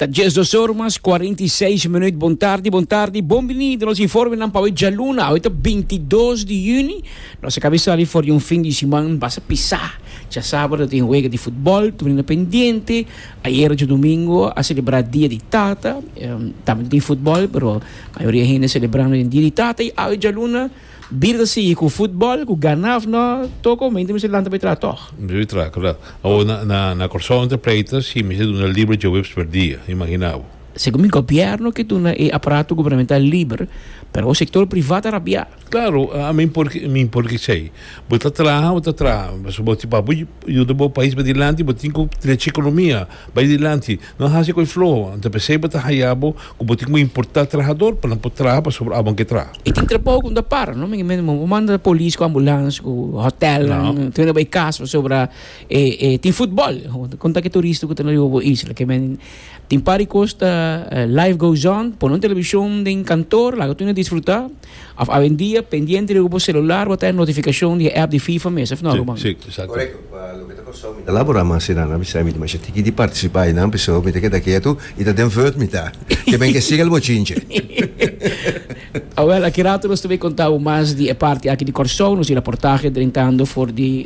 Ta dies dos or mas cuarenta y seis minuut. Bon tardi, bon tardi, bon binido nos informenan pa dja luna. Awe ta bintidos di juni. Nos a kabisa sali for di un fin di siman basa pisá. Dja sabado tin wega di futbol, tur ina pendiente. Ayer dja domingo a selebrá dia di tata. Tambe tin futbol pero mayoria hende selebrando den dia di tata. I awe djaluna. Bira ta sigui cu futbol, cu ganaf no, todo con mente mester lanta bay traha tog. Mester bay traha, correct. Awor na Corsou entre pleito si mester duna liber djoweps per dia, imagina bo. Segun mi gobierno ke duna e aparato gubernamental liber, pero awor sector priva ta rabia. Claro, a mi por mi impor ki esey. Bo ta traha, bo ta traha, pasobra bo tin pa bo yuda bo pais pa dilanti, bo tin cu trechi economia. Bai dilanti, no a hasi koe floho, a ta p'esei bo ta haya bo ku bo tin ku importá trahador pa nan por traha pasobra awor nan ke traha. E tin trabou ku no ta para, no? Mingmente bo por manda polis ku ambulans ku hotèlnan, tin mende bai kas pasobra e tin futbòl. Kon ta ke turista ku ta na riba bo isla? Ke men tin par di kos ta life goes on, pon un televishon den kantor, laga tur nan disfrutá. Of awendia pendiente riba bo celular bo ta e notificacion di e app di FIFA mes, of no Ruben? Si, si, exacto. Correcto, pa loke ta costau mi ta labora mas si nan a bisa mi dimasha tiki di participa y nan pensó mi ta keda ketu y ta den verd mi ta, ke ben ke siga el bochinche. Awel, aki rato nos ta bay conta bo mas di e parti aki di Corsou, nos di raportahe drentando for di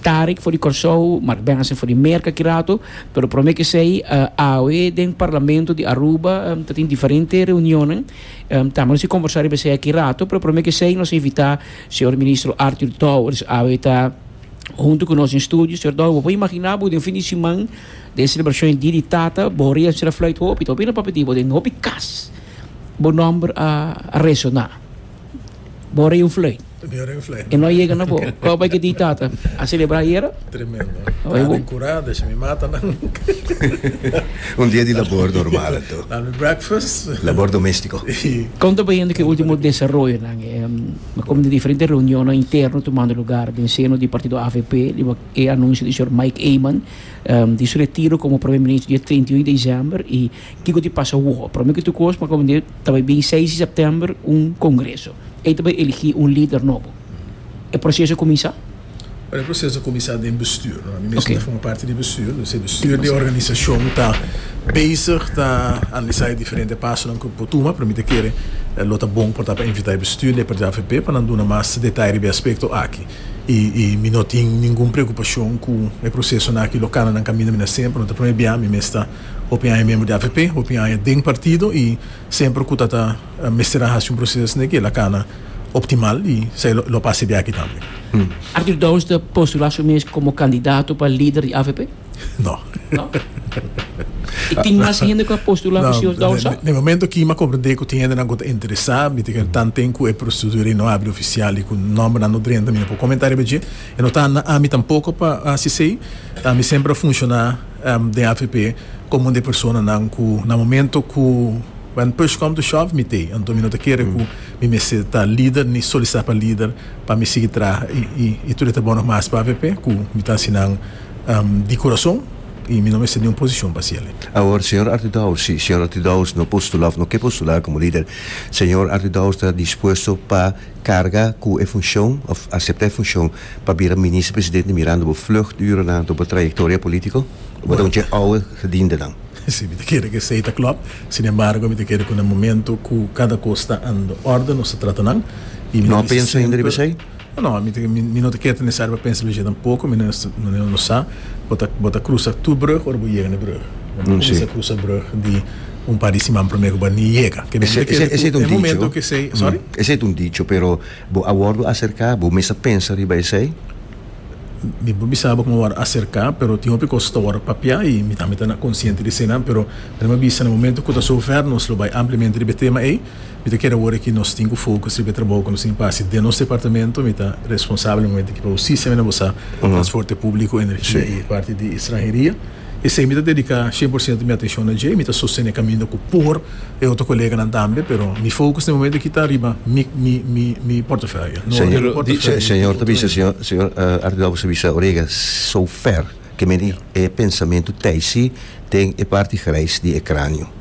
Tarik for di Kòrsou, Mark Benson for di Merka ki rato, pero promé k'esei awe den Parlamento di Aruba ta tin diferente reunionnan, tambe nos a komborsá riba esei aki rato, pero promé k'esei nos a invitá señor Ministro Artur Dowers awe ta huntu ku nos den studio. Señor Dowers, bo por imaginá bo den fin di siman den selebrashon di Dia di Tata, bo a reensera flùit hopi, ta hopi nan papia di bo den hopi kas bo nòmber a resoná. Bo rin vlei. Mi rin vlei. E no yega na bo. Kau bai ke di tata a celebra ayera? Tremendo. Oye bo. Aden cura, desha mi mata nan. Un dia di labor normal anto. Na mi breakfast. Labor domestico. Kon ta bayendo ke ultimo desaroyonan? Komo di diferente reunionnan interno tumando lugar den seno di partido avp riba e anuncio di señor Mike Eman di su retiro komo Primer Minister di e treinta i unu di december i Kiko tin pasa woo? Prome ke tukos pa kominti ta bai bin seis di sèptèmber un kongreso. Ei ta bai eligí un lider nobo. E proseso a kuminsá? Bueno, e proseso a kuminsá den bestuur, no? Mi mesun ta forma parti di bestuur. Dor si e bestuur di e organisashon ta bezig ta analisá e diferente pasonan ku por tuma, pero mi ta kere lo ta bon por ta pa invitá e bestuur di e parti avp pa nan duna mas detaye riba e aspekto aki. I i mi no tin ningun preokupashon ku e prosesonan aki lo kananan kaminda mi na hasié, pero no ta prome bia mi mes ta. Hopi aña membro di avp, hopi aña den partido y semper cu ta ta mester a haci un proceso asina que el a cana optimal y sa el lo pace di aki tambe. Arthur Downs ta postula su mes como candidato pa lider di avp? No. No? Y tin mas hende cu a postula cu señor Downs sa? Den e momento aki mi a comprende cu tin hendenan cu ta interesa, mi tin cu tanten cu e procedura no abri oficial y cu nombernan no drenta mi no por comenta riba dje. E no ta na ami tampoco pa haci esey, ta mi semper a funciona. den avp comun de personanan cu na momento cu when push come to shove mi t'ey anto mi no ta kere cu mi mester ta lider ni solicita pa lider pa mi sigui traha y tur e ta bon nog mas pa avp cu mi ta haci nan di curason y mi no mester niun posicion pa haci aley. Awor señor Artie Dowes, si señor Artie Dowes no postula of no ke postula como lider, señor Artie Dowes ta dispuesto pa carga cu e funcion of acepta e funcion Pa bira Minister Presidente mirando bo vluchturennan door bo trayectoria politico, bo ta un che ouwe gedientenan. Si, mi ta kere ku esei ta klop. Sin embargo, mi ta kere ku na momento ku kada kos ta ando orde, nos ta trata nan. I mi ta bisa semper. No, mi ta mi no ta kere ta nesesario pa pensa riba esei tampoko. Mi no no no sa bo ta bo ta krusa tur brug ora bo yega na e brug. Bo no kuminsa krusa brug di un par di siman promé ku bo a ni yega. Kende mi ta kere ku e momento ku esei. Sorry? Esei ta un dicho pero. Bo a wordo acerca? Bo mes a pensa riba esey? Mi por bisa bo cu mi worde acerca, pero tin hopi cos cu ta worde papia y mi tambe ta na consciente di eseinan. Pero mi lo bisa, na momento cu ta zover nos lo bay ampliamente riba e tema ey, mi ta kere awor aki nos tin cu focus riba e trabaho cu nos tin cu haci den nos departamento. Mi ta responsable momento aki pa Husticia, mi na bo sa, Transporte Publico, Energia y e parti di Extranheria. Esei mi ta dedica cien por ciento mi atencion na dje, mi ta sostene caminda cu por e otro coleganan tambe, pero mi focus na e momento aki ta riba mi mi mi mi portaferio, no riba mi portaferio di otro ente. Señor, señor Artidor bisa bisa Orega so ver ke meni e pensamentu tijsi den e parti grijs di e cranio.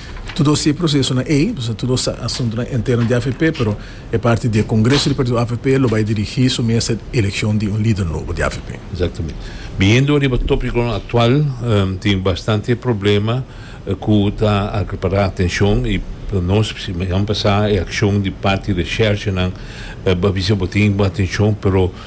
Todo esei prosesonan ei, nos ta tur nos asuntunan interno di AVP, pero e parti di e congreso di partido AVP lo bai dirigi su mesa di eleccion di un lider nobo di AVP. Exactamente. Biniendo riba topiconan actual, tin bastante problema cu ta acapara atencion y pa nos, simehan pasa e accion di parti resherchenan, bo a bisa bo tin bo atencion, pero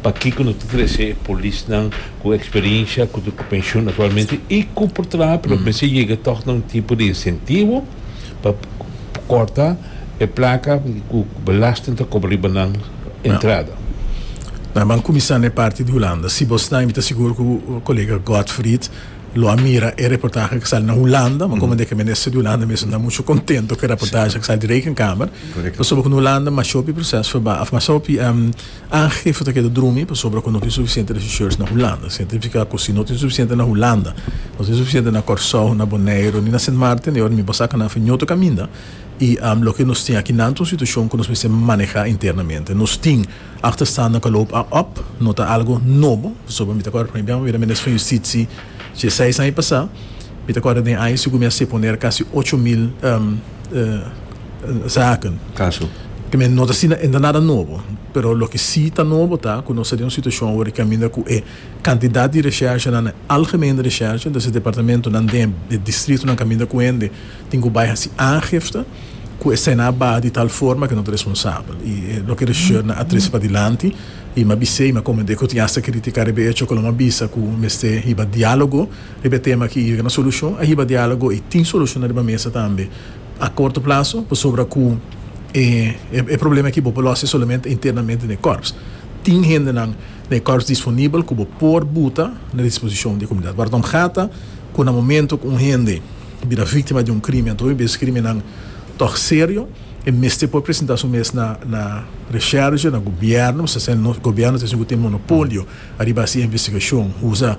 Pakico no ta trece e polisnan cu experiencia cu ta cu pensioen actualmente y cu por traha pero mester yega toch na un tipo di incentivo pa corta e placa cu belasting ta cobra riba nan entrada? Nan ban cuminsa n'e parti di Hulanda. Si bo sta, mi ta sigur cu colega Godfried lo a mira e reportahe cu sali na Hulanda, ma comand'e ke Minister di Hulanda mes no ta mucho contento cu e reportahe cu sali di Rekenkamer, pasobra cu na Hulanda mashopi proces verbaal, of mashopi. Aangifes ta keda drumi pasobra ku no tin sufisiente regisseurs na Hulanda. Sina ta nifiká ku si no tin sufisiente na Hulanda, no tin sufisiente na Kòrsou, na Boneiru ni na Sint Maarten i ora mi basá kanan afin ñoto kaminda i loke nos tin akinan ta un situashon ku nos mester manehá internamente. Nos tin achterstanden ku a loop a op, no ta algu nobo pasobra mi ta kòrda promé bia mi bira minister van Justitsi dje seis aña pasá. Mi ta kòrda den aña si ku mi a seponer kasi ocho mil zaken. Kaso. También no ta asina enda nada nobo, pero loke si ta nobo ta ku nos ta den un situashon awor di kaminda ku e kantidat di reshershanan, e algemene reshersha, entonces e departamentonan den e distritonan kaminda ku hende tin ku bai hasi aangifte ku esena a baha di tal forma ku no ta responsabel i e loke reshershanan a trese padilanti i mi a bis'é i mi a komend'é ku tin hasta kritika riba e echo ku lo mi a bisa ku mester hiba diálogo riba e tema aki i yega na solushon. A hiba diálogo i tin solushonnan riba mesa tambe. A korto plaso, pasobra ku e e problema aki bo por lòs e solamente internamente na e kòrps. Tin hendenan na e kòrps disponibel ku bo por buta na disposishon di e komunidat. Bardon Bgata ku na momento ku un hende bira víktima di un krimen atoa un bes krimennan tòg serio, e mester por presentá su mes na na Resherge, na Gobièrnu, mi sta sèn nos Gobièrnu ta esei ku tin monopolio ariba e investigashon, usa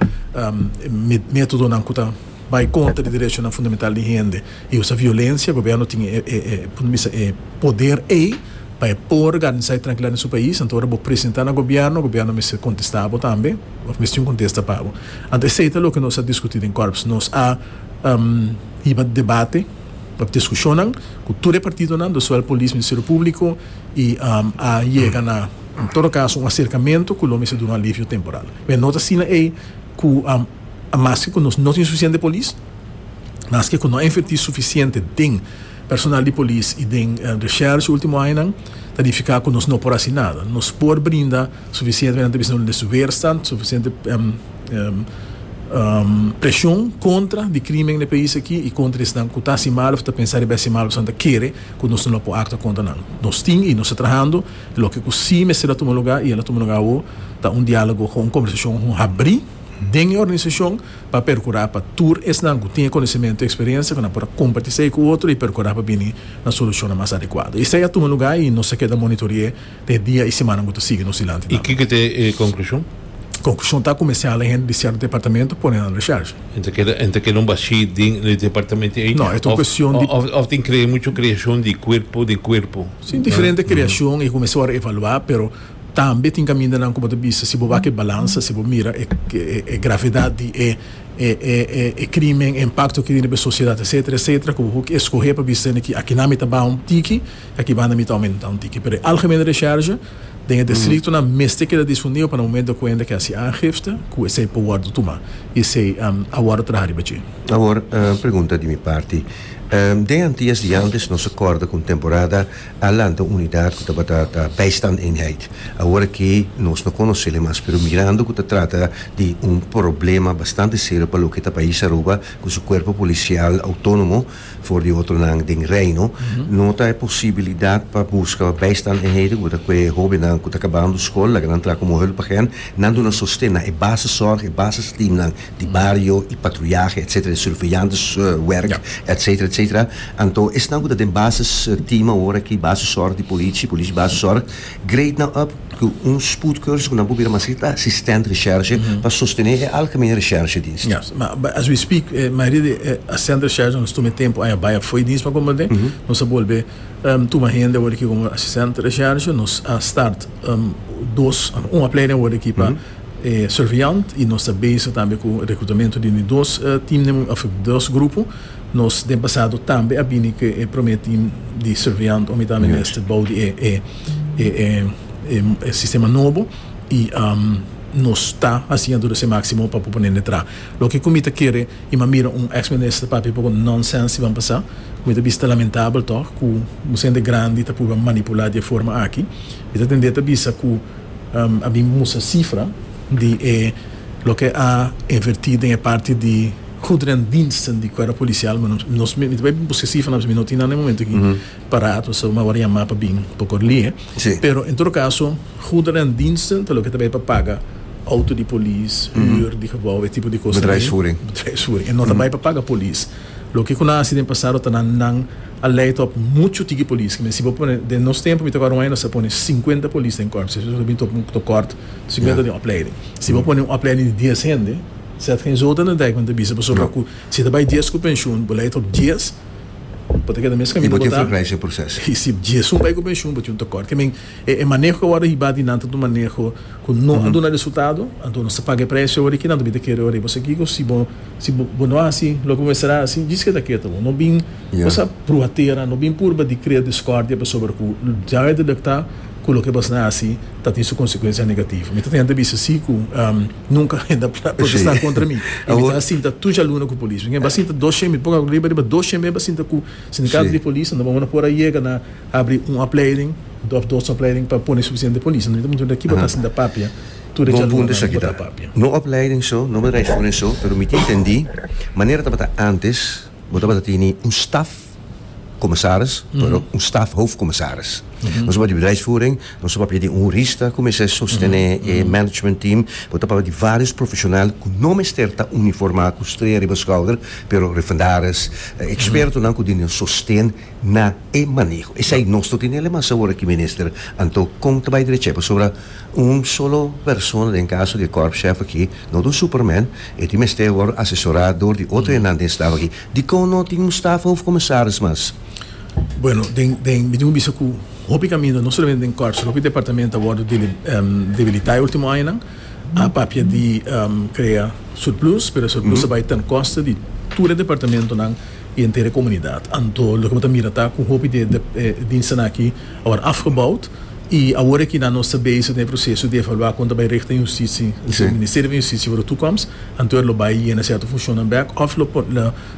métodonan ku ta bai kontra di derechonan fundamental di hende. E usa violencia, gobierno tin e e punto bista e poder ey pa e por garnisa e trankilidad den su pais, anto ora bo presenta na gobierno, gobierno mester contesta bo tambe of mester tin un contesta pa bo. Anto esey ta loke nos a discuti den Corps. Nos a hiba debate of discusionnan cu tur e partidonan, lo zowel Polis, Ministerio Publico y a yega na en todo caso un acercamento cu lo mester duna un alivio temporal. Pero no ta asina ey cu maske cu nos no tin suficiente Polis, Maske ku no a invertí sufisiente den personal di polis i den reshèrsh último añanan, ta nifiká ku nos no por hasi nada. Nos por brinda sufisiente, nan ta bisa no, des weerstand, sufisiente preshon kontra di krímen den pais aki i kontra di esnan ku ta hasi mal òf ta pensá riba hasi mal, esnan ta kere ku nos no lo por aktua kontra nan. Nos tin i nos ta trahando loke ku sí mester a tuma lugá i el a tuma lugá awo, ta un diálogo, un kòmbersashon habrí den e organisashon. pa percura pa tur esnan cu tin e conocimentu y experiencia cu nan por a comparti esey cu otro y percura pa bini na solucionnan mas adecuado. Esey a tuma lugar y nos a keda monitori'é den e dia y simannan cu ta sigui nos dilanti Y tambe. kiko ta e conclusion? Conclusion ta cu mester hala hende di cierto departamento pone nan recherche. En ta keda, en ta keda un bashi den e departamento ey? No, e ta un cuestion di. Of, of tin crea mucho creacion di cuerpo den cuerpo. Si, diferente creacion y cu mester worde evalua, pero. Tambe tin kamindanan ku bo ta bisa si bo wak e balansa, si bo mira e gravedat di e krímen, e impakto ki tin riba e sosiedat etsetera etsetera, ku bo por eskohé pa bisa di akinan mi ta baha un tiki i aki banda mi ta oumentá un tiki. Pero e algemene reshèrge den e distriktonan mester keda difundido pa nan momentu di kuenta ke hasi aangifte ku esei por wòrdu tumá i esei a wòrdu traha riba dje. Awor un pregunta di mi parti. Den Antillas di Andes nos a kòrda ku un temporada a lanta un unidat ku tabata ta Bijstandeenheid, awor ke nos no konosé le mas, pero mirando ku ta trata di un problema bastante serio pa loke ta pais Aruba ku su kuerpo polisial outónomo for di otronan den Reino, no ta e posibilidat pa buska Bijstandeenheden ku bo ta kue hóbennan ku ta kabando skol, laga nan tra ku muhel pa gen nan duna sosten na e baseszorg, e basesteamnan di bario y patruyahe etc. Di surveillants werk etc. Etc. Anto esnan cu ta den bases team awor aki, bases zorg di politie, politie bases zorg, grade nan up cu un spoed cursus cu nan por bira maschi ta assistent recherche pa sostene e algemene recherche dienst. Ja, ma as we speak e mayoria di e assistent recherche nan nos tuma e tempo aña bai afo y dienst pa converte, nos a bolbe tuma hende awor aki como assistent recherche, nos a start dos, un opleiding awor aki pa Surveillant y nos ta bezig tambe cu reclutamentu di dos team of dos grupo. Nos den pasado tambe a bini cu e prome team di Surveillant omitawme mester bou di e sistema nobo y nos ta haciendo nos e maximo pa por pone nan tra. Loke cu mi ta kere y mi a mira un ex minister papia poko nonsense di ban pasa cu mi ta bisa ta lamentabel tog cu un sende grandi ta purba manipula di e forma aki. Mi ta tende ta bisa cu. A bin mustra sifra di e loke a invertí den e parti di goederendiensten di cuerpo policial, ma nos mi ta bai busca e sifra, pasobra mi no tin nan den e momento aki paraat, pasobra mi a wòrdu yamá pa bin por kor lie. Pero en todo caso, goederendiensten ta loke ta bai pa paga outo di polis, huur di gebouw, e tipo di cos ei, bedrijfsvoering, e no ta bai pa paga polis. Loke cu nan a hasi den pasado ta na nan. a lei top muchu tiki polis ke mi si bo pone den nos tempo mi ta acorda un aña nos a pone cincuenta polis den corp seso ta bin top un tocort cincuenta den opleiding si bo pone un opleiding di dies hende sed gen zouden ta dai cuenta bisa pasobra cu si ta bai dies cu pensioen bo lei top dies bo ta keda mes caminda bo ta y si diesun bai cu pensioen bo tin un tocort ke men. E maneho ku awor a hiba dinan ta un maneho ku no a duna resultado, anto nos ta paga e presio awor i kinan ta bin ta kere awor riba. So kiko si bo si bo no hasi loke bo mester hasi djis ke ta keta bo. No bin kusha pruha tera, no bin purba di krea diskordia pasobra ku ya bo a detekta ku loke bo asina hasi ta tin su konsekuensia negativo. Mi ta tenta bisa si ku nunka hende a protesta kontra mi i mi ta sinta tur djaluna ku polis. Ngen bo a sinta dos shembe pokok riba riba dos shembe bo a sinta ku sindikato di polis a no bo bo no por a yega na Abri un opleiding of dos opleiding pa pone sufisiente polis. No tabata mucha kiba ta haciendo ta papia tur e djalunganan kiba ta papia. No opleiding so, no bedrijf scholen so, pero mi ta intendi manera tabata antes bo tabata tini un staf comisaris pero un staf hoofdcommissaris. Nos tabata di bedrijfsvoering, nos ta papia di un hurista cu mester sostene e management team, bo ta papia di varios profesional cu no mester ta uniforma cu strea riba schouder pero refundaris, expertonan cu duna sosten. na e maneho. Esei nos lo tene alemas awor aki Minister, anto kon ta bai drecha pasobra un solo persona den kaso di e Korpschef aki no ta un superman, e tin mester wòrdu asesora dor di otro hennan den staf aki. Dikon no tin un stafhoof komisaris mas? Bueno, den den mi tin ku bisa ku hopi kaminda no solamente den Korps pero hopi departamento a wòrdu debilitá e último añanan a papia di krea surplus, pero e surplus a bai ten koste di tur e departamentonan. I entera e komunidat. Anto loke bo ta mira ta ku hopi di e diensten aki a wòrdu afgebaut i awor aki nan nos ta bezig den e proseso di evaluá kon ta bai richting hustisi. Si e Ministerio van Hustisia wòrdu tukomst, anto e lo bai yena sierto funshonnan bèk òf lo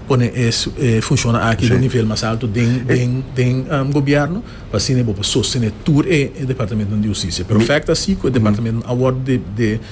pone e funshonnan aki na un nivel mas alto den den gobièrnu pa asina e bo por sostené tur e departamentunan di hustisia. Perfèkto asi ku e departamentunan a wòrdu di.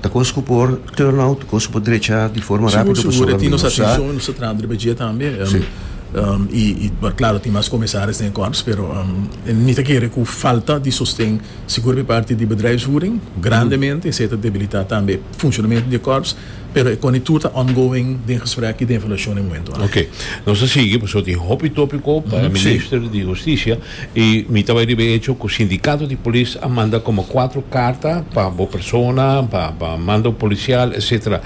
Ta kos ku por turn out, kos ku por drecha di forma rápido pasobra mi no sa. Sigur, sigur. E tin nos atenshon i nos ta trata riba dje tambe. I klaro, tin mas komisaris den e kòrps, pero mi ta kere ku falta di sosten sigur di parti di bedrijfsvoering grandemente esei ta debilitá tambe funshonamentu di e kòrps, pero e kòne tur ta ongoing den gesprek i den evaluashon den momentu aki. Ok. Nos ta sigui pasobra tin hopi tópiko pa e minister di hustisia. Y mi ta bai riba e hecho cu sindicato di polis a manda como cuatro carta pa bo persona, pa pa mando policial etc.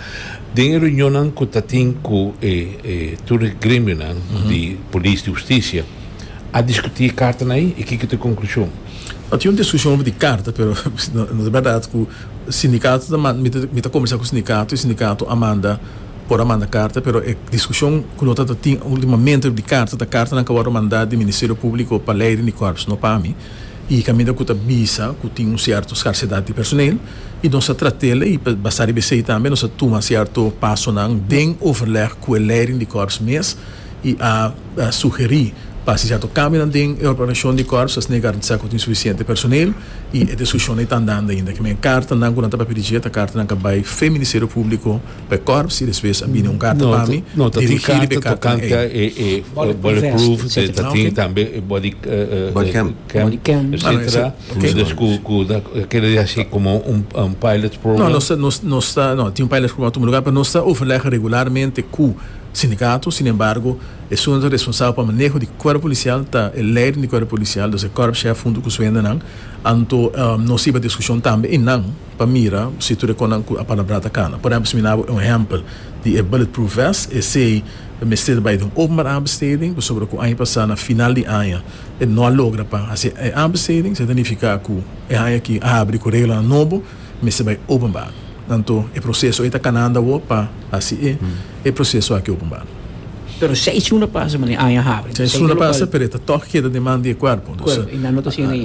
Den e reunionnan cu ta tin cu e e tur e gremionan di polis, di husticia, a discuti e cartanan ei y kiko ta e conclusion? No tin un discusion over di carta pero no ta berdad cu sindicato ta manda, mi ta mi ta conversa cu sindicato y sindicato a manda. por a manda karta pero e diskushon ku lo ta tin ultimamente di karta ta kartanan ku a wòrdu mandá di Ministerio Públiko pa Leiden di Kòrps, no pa mi, i kaminda ku ta bisa ku tin un sierto skarsedat di personel i nos a trat'el i basá riba esei tambe nos a tuma sierto pasonan den overleg ku e Leiden di Kòrps mes i a sugerí pa hasi sierto kambionan den e organizashon di Kòrps pa asina e garantisá ku tin sufisiente personel i e diskushonnan e ta andando ainda kimin kartanan ku nan ta papia di dje ta kartanan ku a bai fen Ministerio Públiko. P'e kòrp si despues a bini un karta pa mi dirigí riba e kòrp nan ei. Bulletproof vest, ta tin tambe e body cam, etcetera, dus ku ta kere hasi komo un pilot program? No, nos ta, no, tin un pilot program pa tudu lugá, pero nos ta overlègha regularmente ku sindikato, sin embargo esun ta responsabel pa maneho di kòrp polisial ta e leiden di kòrp polisial, dus e kòrpshèf huntu ku su hendenan, anto nos hiba diskushon tambe i nan. pa mira si tur e konan ku a palabrá ta kana. Por ehèmpel, si mi na bo e un ehèmpel di e bulletproof vest, esei ta mester ta bai den un openbaar aanbesteding, pasobra ku aña pasá na final di aña e no a logra pa hasi e aanbesteding, sa ta nifiká ku e aña aki a habri ku reglanan nobo, mester bai openbaar. Anto e proseso ei ta kanando awor pa hasi e proseso aki openbaar. Pero seisun a pasa, mane aña a habri. Seisun a pasa, pero e ta tòg keda den man di e kuerpo, dus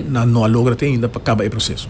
nan no a logra te ainda pa kaba e proseso.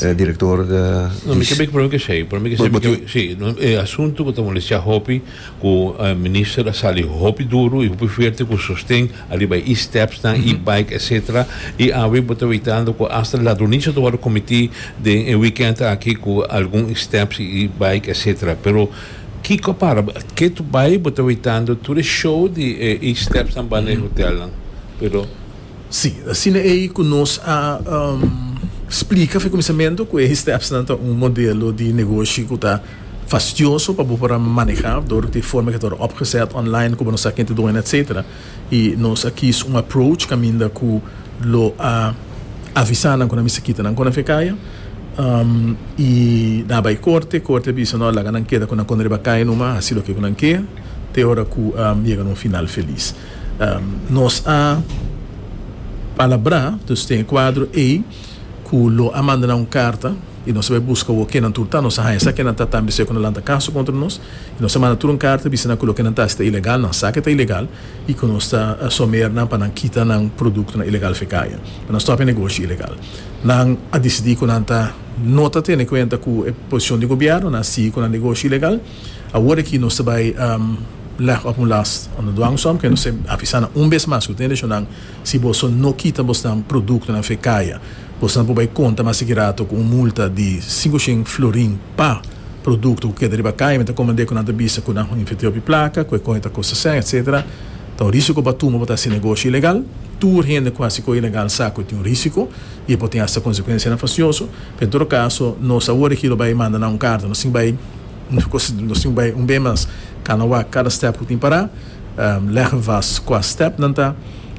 E director di. No mi kebek problema ke shei, problema ke shei porque si e asunto ku ta molestia hopi ku minister a sali hopi duru i hopi fuerte ku sosten ariba e e-stepsnan, e-bike etcetera i awe bo ta weitando ku hasta ladroniche ta wòrdu komití den e weekend aki ku algun e-steps i e-bike etcetera pero kiko a para ke bai bo ta weitando tur e show di e e-stepsnan banda e hotelnan pero. Sí, asina ei ku nos a splika f'e kuminsamentu ku e stepsnan ta un modelo di negoshi ku ta fastioso pa bo por a manehá dor di e forma ku e ta wòrdu opgeset online ku bo no sa ken ta dueño etcetera i nos a kis un approach kaminda ku lo a avisá nan ku nan mester kita nan kona f'e kaya i nan a bai korte, korte a bisa no laga nan keda ku nan kona riba kaya numa hasi loke ku nan ke te ora ku yega na un final felis. Nos a palabrá, dus tin e kuadro ei ku lo a manda nan un karta i nos a bai buska wou ke nan tur ta. Nos a haña sa ke nan ta tambe se ku nan lanta kaso kontra nos i nos a manda tur un karta bisa nan ku loke nan ta hasi ta ilegal, nan sa ke ta ilegal i ku nos ta someer nan pa nan kita nan produktonan ilegal fekaya. Nan a stòp e negoshi ilegal. Nan a disidí ku nan ta no ta tene kuenta ku e posishon di gobièrnu, nan a sigui ku nan negoshi ilegal. Awor aki nos ta bai leg op un las unda nos duan som, ke nos ta avisa nan un bes mas ku tende shon nan, si boso no kita bosnan produktonan fe kaya, bosnan por bai konta mas sigi rato ku un multa di sinku shen florin pa produkto ku keda riba kaya. Mi ta komand'é ku nan ta bisa ku nan a inverti hopi plaka, ku e kònje ta kosta sèn, etsetera. Ta un risiko pa tuma pa ta hasi negoshi ilegal. Tur hende ku hasi koe ilegal sa ku e tin un risiko i e por tin asta konsekuensianan fasioso. Pa en todo caso nos a worry kilo bay manda nan un carta nos tin bay un cos nos tin bay un bay mas cana wak cada step cu tin para leggen vast cua step nan ta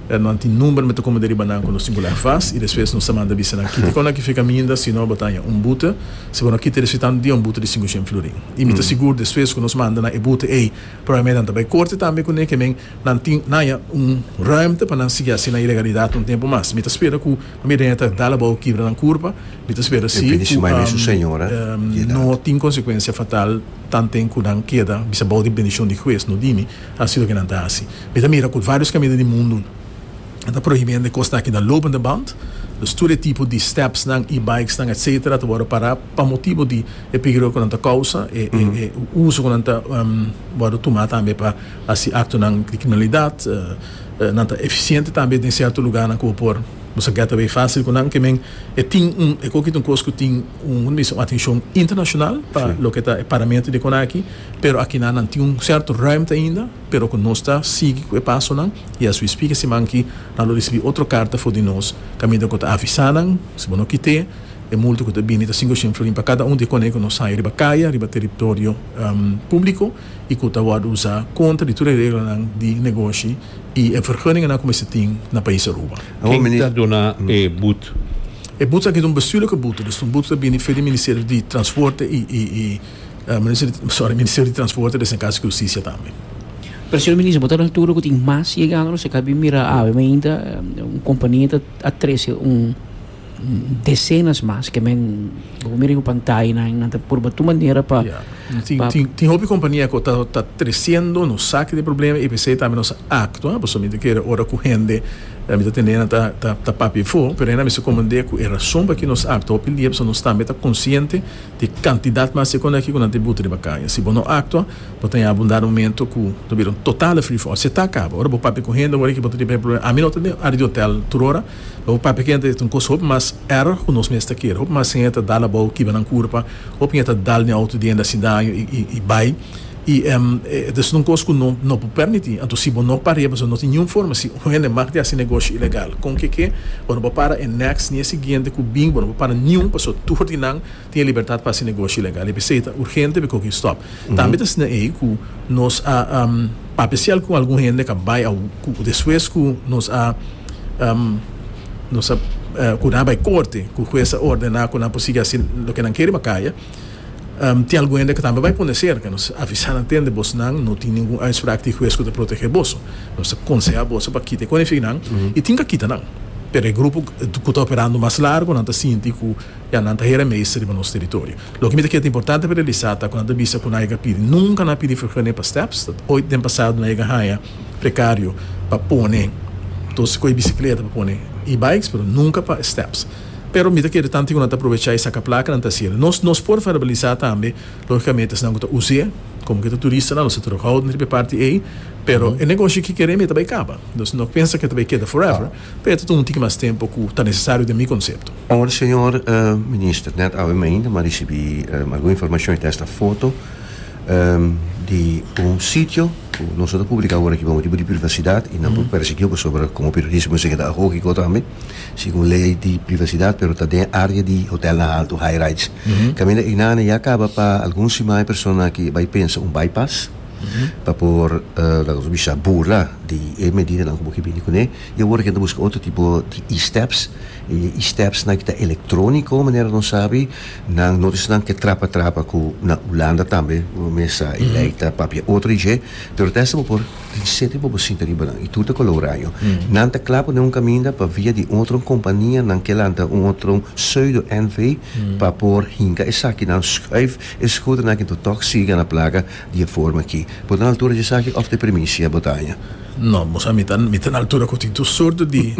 nan tin number me ta como deriba nan cu nos tin cu leggen vast y despues nos ta manda bisa nan kiti con nan ki fica minda si no bo ta haña un bute si bo no kiti despues tanto dia un bute di cinco cien florin y mi ta sigur despues cu nos manda nan e bute ey probablmente nan ta bay corte tambe cu nekenen nan tin nan haña un ruimte pa nan sigui haci nan ilegalidad un tempo mas mi ta spera cu Mi reña ta dal abao kibra nan kurpa. Mi ta spera si ku no tin konsekuensia fatal tanten ku nan keda bisa bou di bendishon di hues. No dimi hasi loke nan ta hasi. Mi ta mira ku vários kaminda di mundu ta prohibí hende kos taki na lopende band. Dus tur e tipo di stepsnan i bikesnan etcétera ta wòrdu pará pa motibu di e pigro ku nan ta kousa, e uso ku nan ta wòrdu tumá tambe pa hasi aktonan di kriminalidat. Nan ta efisiente tambe den sierto lugarnan ku bo por bo sa gèt away fásil ku nan. Ke men e tin un e koki ta un kos ku tin un un bisa un atenshon internashonal pa loke ta e paramentu di konaki, pero akinan nan tin un sierto rùimte ainda, pero ku nos ta sigui ku e pasonan i as wi spika siman aki nan lo risibí otro karta for di nos kaminda ku ta avisá nan si bo no kit'é e multa ku ta bini ta sinku shen florin pa kada un di e kone ku nos sai riba kaya, riba teritorio públiko. y cu ta worde usa contra di tur e reglanan di negoshi y e vergunningennan cu mester tin na pais Aruba. Ken ta duna e but? E but aki ta un bestuurlijke but, dus ta un but cu ta bini for di Ministerio di Transporte y sorry, Ministerio di Transporte, despues na Casa di Husticia tambe. Pero señor minister, bo ta na altura cu tin mas yegando nos a caba di mira awe, mainta un compania ta a trece un. decenas mas ke men bo por mira den bo pantaya nan nan ta purba tur manera pa Ya. Tin pa tin tin hopi kompania ku ta ta tresiendo no sa ki tin problema i p'esei tambe nos a aktua pasobra mi ta kere ora ku hende mi ta tende nan ta ta ta papia afo pero nan a mester komprende ku e rason por aki nos aktua hopi dia pasobra nos tambe ta konsiente di e kantidat mas di konda aki ku nan ta buta riba kaña si bo no aktua bo ta yabi un dado momento ku ta bira un total free for all se ta kaba ora bo papia ku hende awor aki bo ta tene primer problema ami no ta den área di hotel tur ora Lo papia kende ta un kos hopi mas erg ku nos mes ta kere. Hopi mas hende ta dal abou kiba nan kurpa, hopi hende ta dal den outo di hende hasi daño i bai. I e ta siña un kos ku no no por permití. Anto si bo no parea pasobra no tin niun forma si un hende mag di hasi negoshi ilegal. Kon ke ke? Bo no por para e next ni e siguiente ku bin, bo no por para niun pasobra tur di nan. tin libertat pa hasi negoshi ilegal y p'esei ta urgente pa koki un stòp. Tambe ta asina ei ku nos a papia sial ku algun hende ka bai a ku despues ku nos a nos a ku nan a bai korte ku hues a ordená ku nan por sigui hasi loke nan kere makaya tin algun hende ku tambe bai pone serka nos a avisa nan tende boso nan no tin ningun uitspraak di hues ku ta protehe boso nos ta konsehá boso pa kita e konifinan y tin ka kita nan pero e grupo ku ta operando mas largo nan ta sinti ku Ya nan ta hera meester riba nos territorio. Loke mi ta kere ta importante pa realisa ta ku nan ta bisa ku nan a yega pidi. Nunka nan a pidi fergunning pa steps. Oit den pasado nan a yega haña precario pa pone tos ku e bicicleta pa pone e-bikes pero nunka pa steps. Pero mi ta kere tanti ku nan ta aprovecha e saca placa nan ta haci el. Nos nos por verbalisa tambe logicamente esnan ku ta us'e como ku e ta turista nan nos ta terughouden riba e parti ei pero e negoshi ki kere mi ta bai caba. Nos no pensa ku e ta bai keda forever. Peter, Tun un tiki mas tempu ku ta nesesario den mi konsepto. Awor señor Minister, nèt awe mi ainda m'a risibí algun informashon hita esta foto di un sitio ku nos no ta publiká awor aki pa motibu di privasidat i nan por persigí pasobra komo periodismo esei keda ahogiko tambe segun lei di privasidat pero ta den área di hotelnan altu, high rides. Kaminda einana ya kaba pa algun simanan e persona aki bai pensa un bypass. pa por laga nos bisa burla di e medidanan ku bo ke bini kuné i awor a kenda buska otro tipo di e-steps i e e-steps nan ke ta elektroniko manera nos sabi nan no ta esnan ke trapa trapa ku na Hulanda tambe bo mes sa e lei ta papia otro dje pero ta esta bo por tin sete pa bo sinta riba nan i tur ta kolouraño nan ta kla pone un kaminda pa via di otro kompania nan ke lanta un otro seudo NV pa por hinka esakinan skuif e skuternan ke ta tòg siga na plaga. Di e forma aki. Bo ta na altura di esaki of te primicia bo ta haña? No, bo sa mi ta mi ta na altura cu tin tur sorto di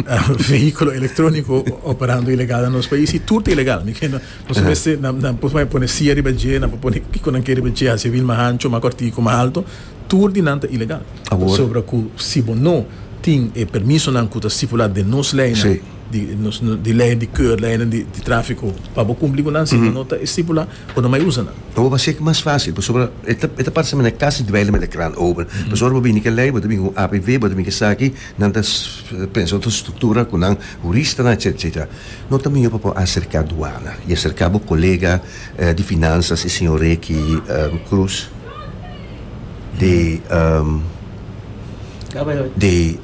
vehiculo electronico operando ilegal na nos pais y tur ta ilegal. Mi cree nos mester na na por bay pone cia riba dje, nan por pone kico nan ke riba dje, haci wiel mas ancho, mas cortico, mas alto, tur di nan ta ilegal. Pasobra cu si bo no tin e permisonan cu ta stipula den nos leynan di nos di leynan di keur, leynan di trafico pa bo cumpli cu nan si bo no ta estipula. cu no mai usa nan. Bo bo haci'e mas facil pasobra e ta e ta parse mane casi duele met e krant ober. Pasobra ora bo bini ke ley bo ta bini cu un APV bo ta bini ke sa aki nan ta pensa otro structura cu nan huristanan etcetera etcetera. No ta miho pa bo acerca duana y acerca bo colega di finanzas e señor Ricky Cruz de de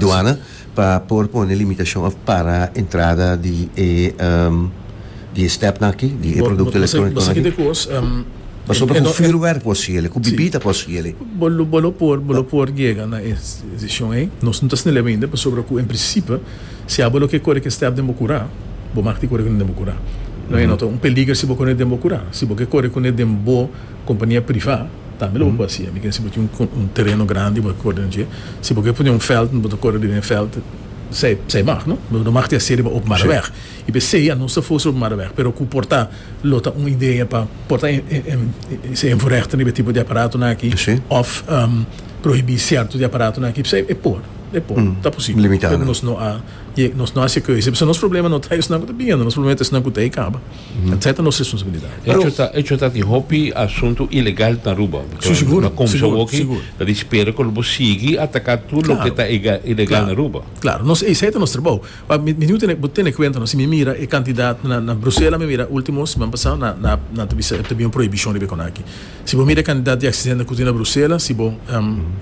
duana. pa por pone limitashon òf para entrada di e di e stèpnan aki, di e produkto elektróniko. Bo sa kiko kos? Paso bo ta ku fürwerk por si elei, ku bibida por si elei. Bo lo bo lo por bo lo por yega na e desishon ei. Nos no ta snel'e bende pasobra ku en prinsipe si abo lo ke kore ke stèp den bo kura, bo mak di kore kuné den bo kura. Lo ei no ta un peliger si bo kore den bo kura. Si bo ke kore kuné den bo Kompania privá tambe lo bo por hacié. Mi kere si bo tin un tereno grandi bo ta kore den dje. Si bo ke pone un veld bo ta kore riba e veld esei mag no. Bo no mag tin hacié riba opo mara weg. I pesei anos ta forzá opo mara weg pero ku por ta lo ta un idea pa por ta esei invoregten riba e tipo di aparatonan aki of prohibí cierto di aparatonan aki pesei e por e por ta posibel pero nos no a nos no a hacié keuze p'esei nos problema no ta esnan ku ta bienda nos problema ta esnan ku ta e kaba. Etcetera nos responsabilidad. Echo ta di hopi asunto ilegal na Aruba. Si sigur. Na comenzó aki ta di spera cu lo bo sigui ataca tur loke ta ilegal na Aruba. Claro. Nos esey ta nos trabou. Mi niu bo tene cuenta no si mi mira e cantidad na Bruselas mi mira ultimo siman pasao nan ta bisa ta bin un prohibicion riba e conaki. Si bo mira e cantidad di accidente cu tin na Bruselas si bo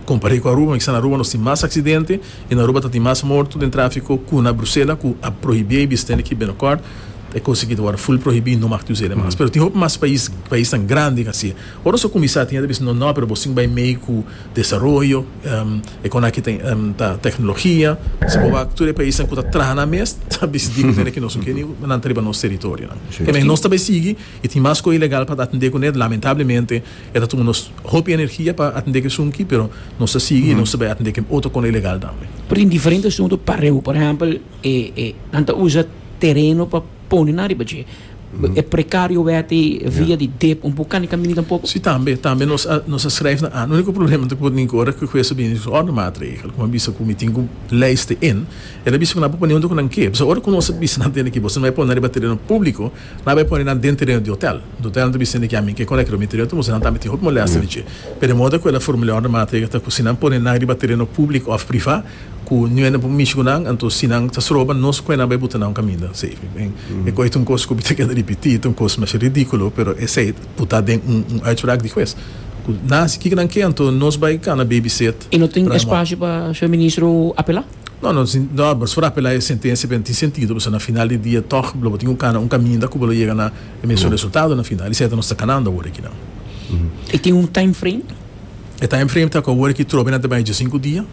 compare cu Aruba mi sa na Aruba nos tin mas accidente I na Aruba ta tin mas morto den tráfiko ku na Brusela ku a prohibí ei bistén aki binokòrt ta e kos aki ta wòrdu ful prohibí no maka ta usa ei mas pero tin hopi mas pais paisnan grandi ta hasié ora nos ta kuminsá tin hende ta bisa no no pero bo sin bai mei ku desaroyo e kon aki ta teknologia si bo wak tur e paisnan ku ta traha nan mes ta bisa di bistén aki no su ke ni nan ta riba nos teritorionan keme nos ta bai sigui i tin mas kos ilegal pa atendé kuné lamentablemente. E ta tuma nos hopi energia pa atende ke sunki, pero nos ta sigui nos ta bai atende ken otro kona ilegal tambe. Prin diferente asuntu pareu, por ehempel e e nan ta usa tereno pa pone nan riba dje. E prekario weti via di dep un pukani kamini tampoko. Si tambe, tambe nos a nos a skrèf na an. Uniko problema ta por ningku ora ku hues a bini ku otro matregel, ku a bisa ku mi tin ku leister in, el a bisa ku nan por pone huntu ku nan ke. P'esei ora ku nos a bisa nan tene ki bo si no bai pone nan riba tereno públiko, Nan bai pone nan den tereno di hotel. Dutel nan ta bisa di ami ke con e cremitorio ta usa, nan tambe tin hopi molestia di dje. Pero e moda cu e la formulea orden maatregel ta cu si nan pone nan riba tereno public of priva cu niue nan por mishi cu nan, anto si nan ta sroba nos cue nan bai buta nan caminda. E cu ey ta un cos cu mi ta keda ripiti, ta un cos masha ridiculo, pero esey ta buta den un uitspraak di huez cu nan si kiko nan ke, anto nos bai cana babysit. Y no tin espacio pa su ministro apela? No, no tin, no, boso por apelá e sentensia pero no tin sentido pasobra na final di dia tòg lo bo tin ku kana un kaminda ku bo lo yega na e mesun resultado na final. I sèt nos ta kanando awor aki nan. I tin un time frame? E time frame ta ku awor aki trobe nan ta bai dje sinku dia